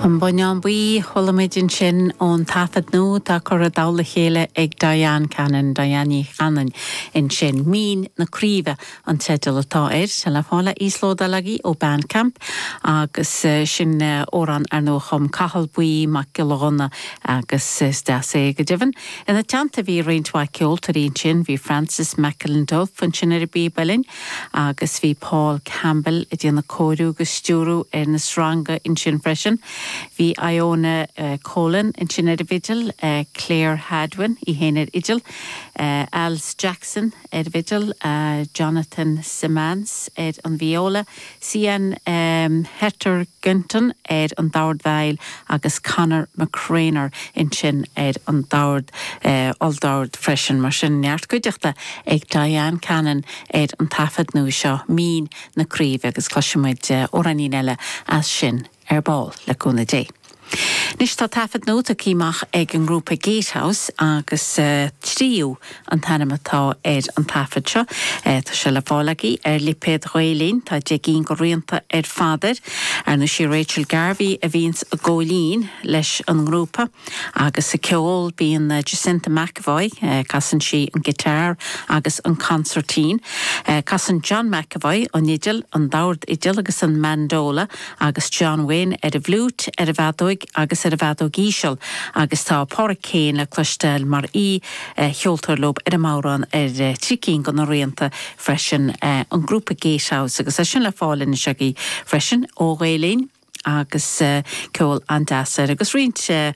An Bonnán Buí, chuala muid ansin ón taifead nua atá curtha i dtoll a chéile ag Diane Cannon, Diane Ní Chanainn ansin. Mín na Craoibhe an teideal atá air. Tá le fáil a íoslódáil agaibh ó Bandcamp agus sin amhrán ar ndóigh a chum Cathal Buí Mac Giolla Ghunna agus is deas é go deimhin. Ina teannta bhí roinnt mhaith ceoltóirí ansin, bhí Francis McIlduff ansin ar an bpíb uilleann, Agus bhí Paul Campbell ag déanamh cóiriú agus stiúrú ar na sreanga ansin freisin. Bhí Ioana Colan ansin ar an bhfidil, Clare Hadwen í fhéin ar fhidil, Alice Jackson ar an bhfidil, Jonathan Simmance ar an vióla, Sian Hetherington ar an dordveidhil agus Conor McCreanor ansin ar an dord, olldord freisin, mar sin, neart cuideachta ag Diane Cannon ar an taifead nua seo, Mín na Craoibhe, agus cloisfidh muid amhráinín eile as sin ar ball, le cúnamh Dé. Anois tá taifead nua tugtha amach ag an ngrúpa Gatehouse agus Tríú an t-ainm atá ar an taifead seo. Tá sé le fáil agaibh ar lipéad Ghael Linn. Tá deich gcinn de rianta ar fad air. Ar ndóigh sí Rachel Garvey a bhíonns ag gabháil fhoinn leis an ngrúpa agus ag ceol bíonn Jacinta McEvoy, casann sí an guitar agus an consairtín. Casann John McEvoy an fhidil, an dordfhidil agus an mandola agus John Wynne ar an bhfliúit, ar an bhfeadóig agus ar an bhfeadóig íseal, agus tá Pádraic Keane le cloisteáil mar aoicheoltóir leo ar an mbodhrán ar thrí cinn de na rianta freisin, an grúpa Gatehouse, agus é sin le fáil anois agaibh freisin ó Ghael-Linn, agus ceol an-deas air, agus roinnt.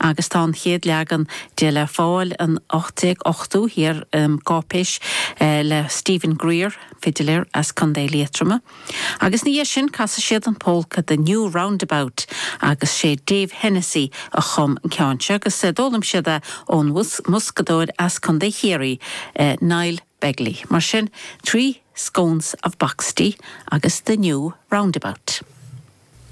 agus tá an chéad leagan de le fáil in 1883 i gcáipéis le Stephen Grier, fidiléir as Co. Liatroma, agus ina dhiaidh sin casfaidh siad an pólca The New Roundabout agus 'sé Dave Hennessy a chum an ceann seo agus d'fhoghlaim siad é ón mboscadóir as Co. Chiarraí, Niall Begley. Mar sin, Three Scones of Boxty agus The New Roundabout.